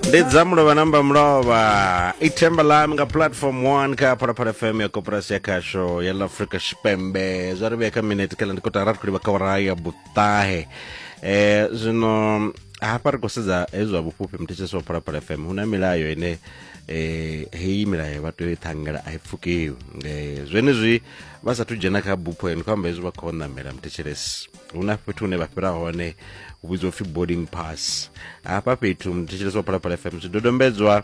ndi dza mulovha namba mulovha i themba lam nga platform 1 kha phalaphala fm ya koporasi ya khasho ya la afrika tshipembe zwa ri vhea kha minete khala ndi kotara ri khou livha kha ora ya buṱahe eh zwino hafha ri khou sedza hezwi zwa vhufhufhi muthetshesi wa phalaphala fm hu na milayo ine eh heyi milayo vha tea u i ṱhangela a i pfukiwi eh zwenezwi vha sathu dzhena kha bupho ene khou amba hezwi vha khou ṋamela muthetshesi hu na fhethu hune vha fhira hone hu vhidziwa upfhi boarding pass hafha fhethu thetshelesi wa phalaphala fm zwidodombedzwa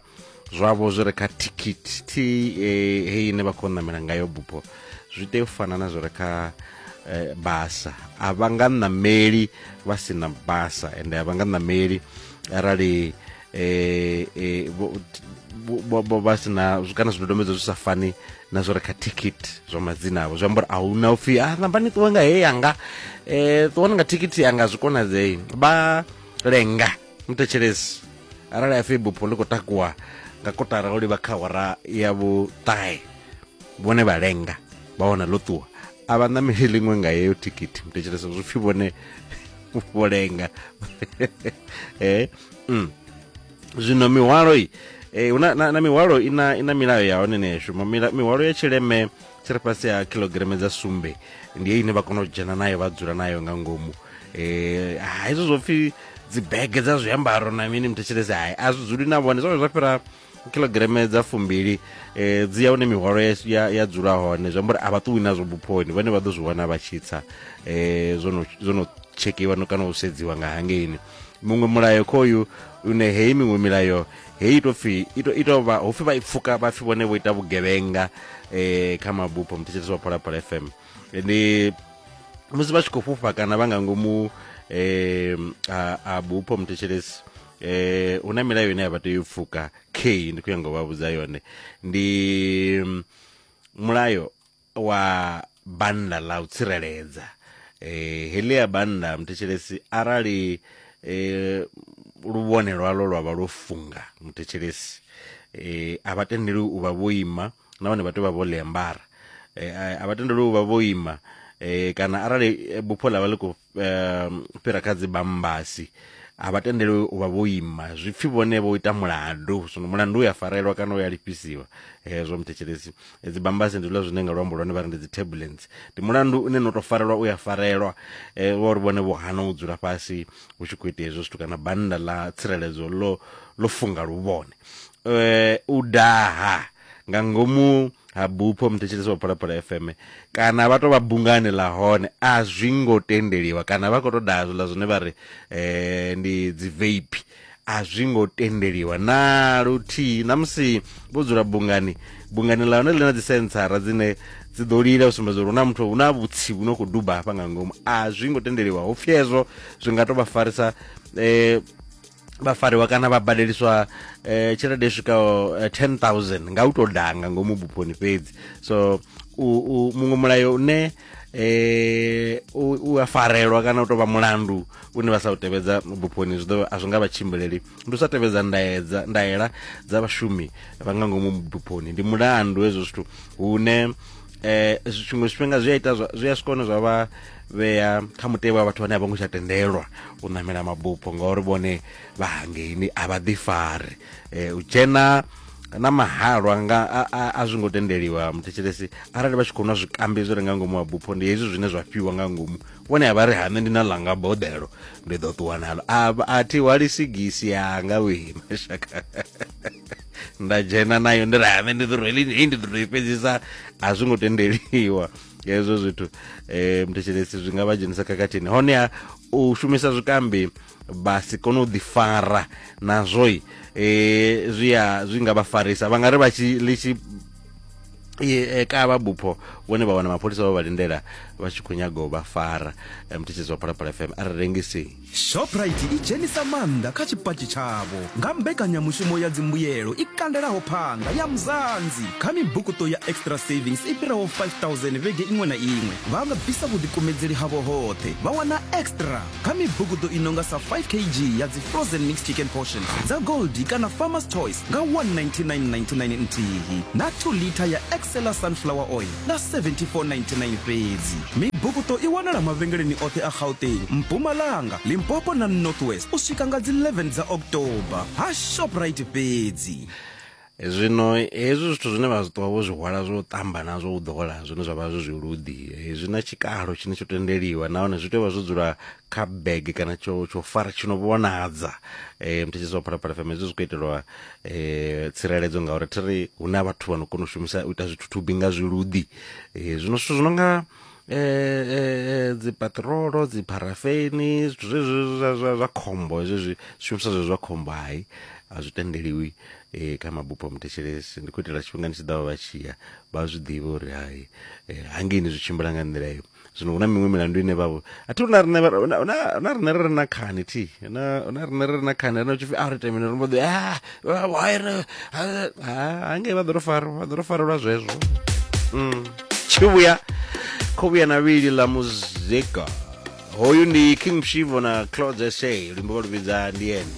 zwavho zwi re kha tikiti t eh, heyi ine vha khou namela ngayo bupho zwi tea u fana na zwi re kha eh, basa a vha nga nameli vha si na basa ende a vha nga nameli arali eh, eh, vho- vho- vho- vho vha si na zwi- kana zwidodombedzwa zwi sa fani na zwo re kha thikhithi zwa madzina avho zwi amba uri a hu na upfhi a namba ni ṱuwe nga he yanga um ṱuwani nga thikhithi yanga zwi konadzei vha lenga mutetshelesi arali a fhi bupho ḽi khou takuwa nga kotara o livha kha hora ya vhuṱahe vhone vha lenga vha wana ḽo ṱuwa a vha ṋameli ḽiṅwe nga yeyo thikhithi mutetshelesa zwi pfhi vhone vho lenga eh mm. zwino mihwalo i e, na, na, na mihwalo ina ina milayo ya hone nesho mihwalo ya tshileme tshi ri fhasi ha kilograme dza sumbe ndi ye ine vha kona u dzhena nayo vha dzula nayo nga ngomu eh hezwo zwo pfhi dzibege dza zwiambaro na mini mthetshelese hai a zwi dzuli na vhone zwone zwa fhira kilograme dza fumbili eh, dzi ya hune mihwalo ya, ya, ya dzula hone zwi amba uri a vha ṱuwi nazwo buphoni vhane vha ḓo zwi wana vha tshi tsa eh, zwo no tshekhiwa kana u sedziwa nga hangeini muṅwe mulayo khoyu une heyi miṅwe milayo heyi ito pfi ito ito vha hopfi vha ipfuka vha pfi vhone vho ita vhugevhenga eh kha mabupo mthetshelesi wa phalaphala fm ndi musi vha tshi khou fhufha kana vha nga ngomu eh a, a bupo mthetshelesi eh hu na milayo ine ya vha tea u pfuka k ndi khou ya ngo vha vhudza yone ndi mm, mulayo wa bannda ḽa u tsireledza eh heḽi ya bannda muthetshelesi arali eh luvhone lwalo lwa vha lwo funga muthetshelesi eh a vha tendeli u vha vho ima nahone vha tea u vha vho ḽiambara eh a- a vha tendeli u vha vho ima eh kana arali eh, bupho ḽa vha ḽi khou um, fhira kha dzi bambasi a vha tendelwe u vha vho ima zwi pfhi vhone vho ita mulandu zwino mulandu u ya farelwa kana u ya lifhisiwa hezwo muthetshelesi dzi bambasi ndi zwiḽa zwine nga luambo lwone vha ri ndi dzi turbulence ndi mulandu une no to farelwa u ya farelwa um wa uri vhone vho hana u dzula fhasi hu tshi khou itea hezwo zwithu kana bannda ḽa tsireledzo ḽo ḽo funga luvhone um u daha nga ngomu ha bupho muthetshelesi wa phalaphala fm kana vha to vha bungani ḽa hone a zwi ngo tendeliwa kana vha khou to daha zwiḽa zwine vha ri um ndi dzi vape a zwi ngo tendeliwa na luthihi na musi vho dzula bungani bungani ḽa hone ḽi na dzisentsara dzine dzi ḓo lila u sumbedza uri hu na muthu hu na vhutsi vhu no khou duba hafha nga ngomu a zwi ngo tendeliwa ho pfhi hezwo zwi nga to vha farisa um vha fariwa kana vha badeliswa eh, tshelede i swikaho eh, 10000 nga u tou danga ngomu buponi fhedzi so muṅwe mulayo une eh u a farelwa kana u tovha mulandu une vha sa u tevhedza buponi zwi ḓo a zwi nga vha tshimbileli ndi u sa tevhedza ndaedza ndaela dza vhashumi vha nga ngomu buponi ndi mulandu hezwo zwithu hune eh tshiṅwe tshifhinga zwi a ita zwi a swikone zwa vha vhea kha mutevhe wa vhathu vhane a vho ngo tsha tendelwa u namela mabupho ngauri vhone vha hangeini a vha ḓifari eh, u dzhena na mahalwa nga a zwi ngo tendeliwa muthetshelesi arali vha tshi khou nwa zwikambi zwi re nga ngomu wa bupho ndi hezwi zwine zwa fhiwa nga ngomu vhone a vha ri hane ndi na langa boḓelo ndi ḓo ṱuwa nalo a thi hwali sigisi yanga wee mashaka nda dzhena nayo ndi rame ndi ḓo rwela ini hei ndi ḓo i fhedzisa a zwi ngo tendeliwa hezwo zwithu um thetshelesi zwi nga vha dzhenisa khakhathini honeha u shumisa zwikambi vha si kone u ḓifara nazwoi um zwi a zwi nga vha farisa vha nga ri vha tshi ḽi tshi e ka vha bupho vhone vha wana mapholisa vha vha lindela vha tshi khou nyaga u vha fara mthetshedzo wa phalaphala fm a ri rengisei shoprite i dzhenisa maanḓa kha tshipatshi tshavho nga mbekanyamushumo ya dzimbuyelo i kandelaho phanga ya muzanzi kha mibukuto ya extra savings i fhiraho 5000 vhege iṅwe na iṅwe vha nga bvisa vhuḓikumedzeli havho hoṱhe vha wana extra kha mibukuto i nonga sa 5 kg ya dzi frozen mixed chicken portions dza gold kana farmers choice nga 19999 nthihi na 2 liter ya excella sunflower oil nga 7499 fhedzi. Mibukuṱo i wanala mavhengeleni oṱhe a Gauteng, Mpumalanga, Limpopo na North West u swika nga dzi 11 dza October ha Shoprite fhedzi. Zwino hezwi zwithu zwine vha zwi ṱuwa vho zwi hwala zwo ṱamba na zwo u ḓola zwine zwa vha zwi zwiluḓi zwi na tshikalo tshine tsho tendeliwa nahone zwi tea u vha zwo dzula kha bege kana tsho tsho fara tshi no vhonadza eh mthetshedzo wa phalaphala fm hezwi zwi khou itelwa eh tsireledzo ngauri thi ri hu na vhathu vha no kona u shumisa u ita zwithuthubi nga zwiluḓi eh zwino zwithu zwi no nga eh, eh dzipatrolo dzipharafeni zwithu zwezwi zwa- zwa zwa khombo hezwi zwi shumiswa zwe zwa khombo hai a zwi tendeliwi eh kha mabupo a muthetshelesi ndi khou itela tshifhingani tshi ḓaho vha tshiya vha zwi ḓivhe uri hai eh, hangeini zwi tshimbila nga nḓila iyo zwino hu na miṅwe milandu ine vhavho a thi na rine na rine ri na khani thi na na rine ri na khani ri na tshipfi a ri ite mini ri mbo ḓi ah, ah, why ri ha ngei vha ḓo ri fara vha ḓo ri farelwa zwezwo mm. tshi vhuya kho vhuya na vhili ḽa muzika hoyu ndi king shivo na clouds sa luimbo vha lu vhidza ndi ene